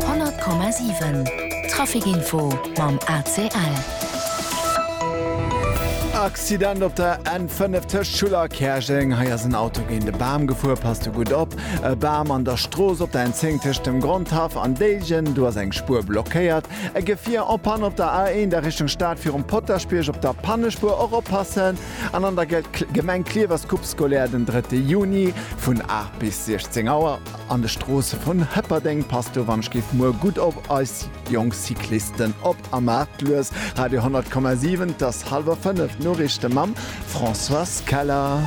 100,7 Trafic Info mam ACL. Accident op der N5 tëscht Schuller a Käerjeng. Hei ass en Auto géint e Bam gefuer. Passt do gutt op. E Bam an der Strooss op der N10 tëscht dem Grondhaff an Déiljen. Do ass eng Spuer blockéiert. E Gefier en panne op der A1 a Richtung Stad virum Potaschbierg op der Pannespuer. Och oppassen. An an der Gemeng Klierf ass d'Coupe scolaire den drëtte Juni vun 8 bis 16 Auer. An de Stroosse vun Hëpperdeng passt do wann ech géif muer gutt op eis jonk Cyclisten op a maacht lues. Radio 100,7 't ass halwer 5, d'Noriichte mam Françoise Keller.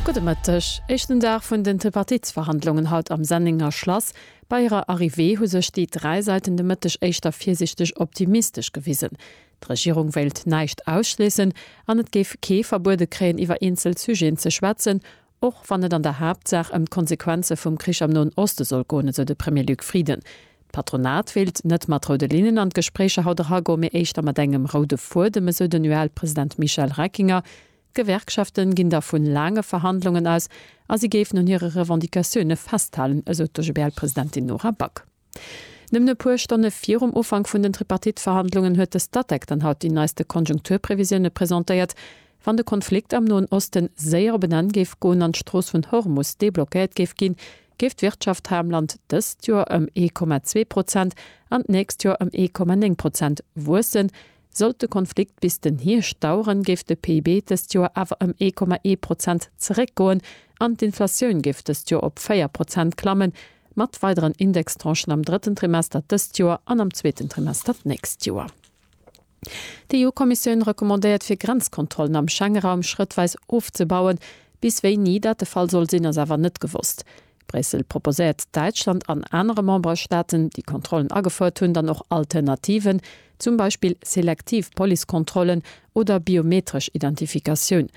Gudde Mëtteg. Éischten Dag vun den Tripartitsverhandlungen haut am Sennenger Schlass. Bei hirer Arrivée hu sech déi dräi Säiten de Mëtteg éischter virsiichteg optimistesch gewisen. D'Regierung wéilt näischt ausschléissen an et géif kee verbuede kréien iwwer eenzel Sujeten ze schwätzen, Och wann et an der Haaptsaach ëm d'Konsequenze vum Krich am Noen Oste soll goen, esou de Premier Luc Frieden. D'Patronat wéilt net mat roude Linnen an d'Gespréicher haut eragoen, mee éischter mat engem roude Fuedem, esou den UEL-President Michel Reckinger. D'Gewerkschaften ginn da vu laange Verhandlungen aus a si géifen un hire Revendicatioune festhalen, esou d'OGBL-Presidentin Nora Back. Nëmmen e puer Stonne virum Ufank vun den Tripartite-Verhandlungen huet de Statec dann haut déi neiste Konjunkturprevisioune presentéiert. Wann de Konflikt am Noen Oste séier op en Enn géif goen an d'Strooss vun Hormus deblockéiert géif ginn, géif d'Wirtschaft hei am Land dëst Joer ëm ee Komma zwee Prozent an d'nächst Joer ëm ee Komma néng Prozent wuessen, Sollt de Konflikt bis den Hierscht daueren, géif de PIB dëst Joer awer ëm ee Komma ee Prozent zeréckgoen an d'Inflatioun géif dëst Joer op véier Prozent klammen, mat weideren Indextranchen am drëtten Trimester dëst Joer an am zweeten Trimester d'nächst Joer. D'EU-Kommissioun recommandéiert fir Grenzkontrollen am Schengeraum schrëttweis ofzebauen. Bis wéini dat de Fall soll sinn, ass awer net gewosst. Bréissel proposéiert Däitschland an anere Memberstaaten, déi Kontrollen agefouert hunn, dann och Alternativen, zum Beispill selektiv Policekontrollen oder biometresch Identifikatioun.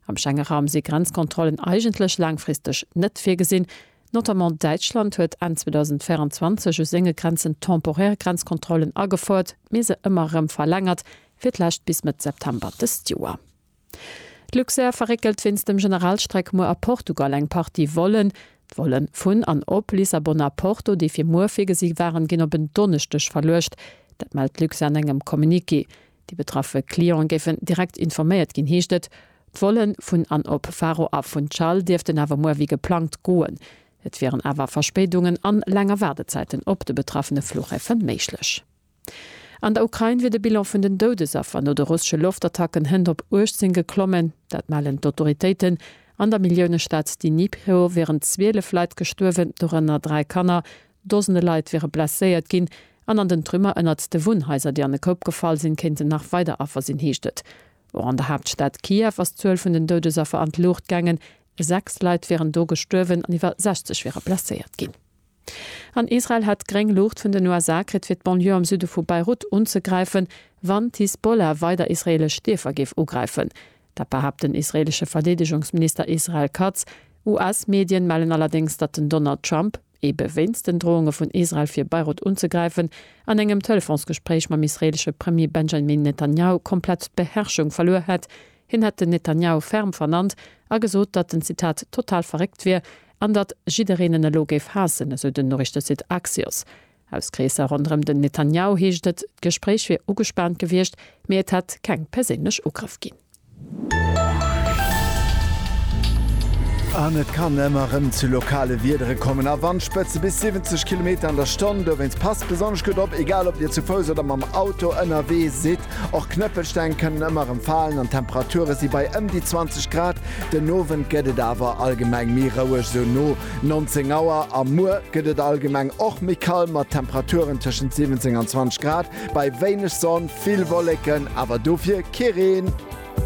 Am Schengeraum si Grenzkontrollen eigentlech laangfristeg net virgesinn. Notamment Däitschland huet Enn 2024 u senge Grenzen temporär Grenzkontrollen agefouert, mee se ëmmer erëm verlängert, fir d'lescht bis Mëtt September dëst Joer. D'Luxair verréckelt wéinst dem Generalstreck muer a Portugal eng Partie Vollen. D'Volle vun an op Lissabon a Porto, déi fir muer virgesi waren, ginn op en Donneschdeg verluecht. Dat mellt d'Luxair an engem Communiqué. Déi betraffe Clienten géifen direkt informéiert ginn, heescht et. D'Vollen vun an op Faro a Funchal dierften awer muer wéi geplangt goen. Et wieren awer Verspéidungen an länger Waardezäiten op de betraffene Fluchhäfe méiglech. An der Ukrain wier de Bilan vun den Doudesaffer no de russesche Loftattacken hënt op 18 geklommen. Dat mellen d'Autoritéiten. An der Milliounestad Dnipro wieren 12 Leit gestuerwen, dorënner dräi Kanner. Dosende Leit wiere blesséiert ginn. An an den Trümmer ënnert de Wunnhaiser, déi an e Koup gefall sinn, kéinten nach weider Affer sinn, heescht et. Och an der Haaptstad Kiew ass d'Zuel vun den Doudesaffer an d'Luucht gaangen. Sechs Leit wieren do gestuerwen an iwwer 60 wiere blesséiert ginn. An Israel hätt gréng Luucht vun den USA kritt, fir d'Banlieue am Süde vu Beirut unzegräifen, wann d'Hisbollah weider israeelesch Dierfer géif ugräifen. Dat behaapt den israeelesche Verdeedegungsminister Israel Katz. US-Medien mellen allerdéngs, datt den Donald Trump, ebe wéinst den Drohunge vun Israel fir Beirut unzegräifen, an engem Telefonsgespréich mam israeelesche Premier Benjamin Netanjahu komplett d'Beherrschung verluer hätt. Hien hätt den Netanjahu ferm vernannt a gesot, datt en, Zitat, total verréckt wier, An datt jiddereen en elo géif haassen, esou den Noriichtesite Axios. Aus Kreesser ronderëm den Netanjahu heescht et, d'Gespréich wier ugespaant gewiescht, mee et hätt keng perséinlech Ugrëff ginn. An et kann ëmmer rëm zu lokale Wiedere kommen a Wandspëtze bis 70 Kilometer an der Stonn. Dowéinst passt besonnesch gutt op, egal ob Dir zu Fouss oder mam Auto ënnerwee sidd. Och Knëppelsteng kënnen ëmmer erëm falen an d'Temperature si bei ëm déi 20 Grad. Den Owend gëtt et awer allgemeng méi roueg, sou no 19 Auer. A muer gëtt et allgemeng och méi kal mat Temperaturen tëschent 17 an 20 Grad bei wéineg Sonn, vill Wolleken, awer dofir kee Reen.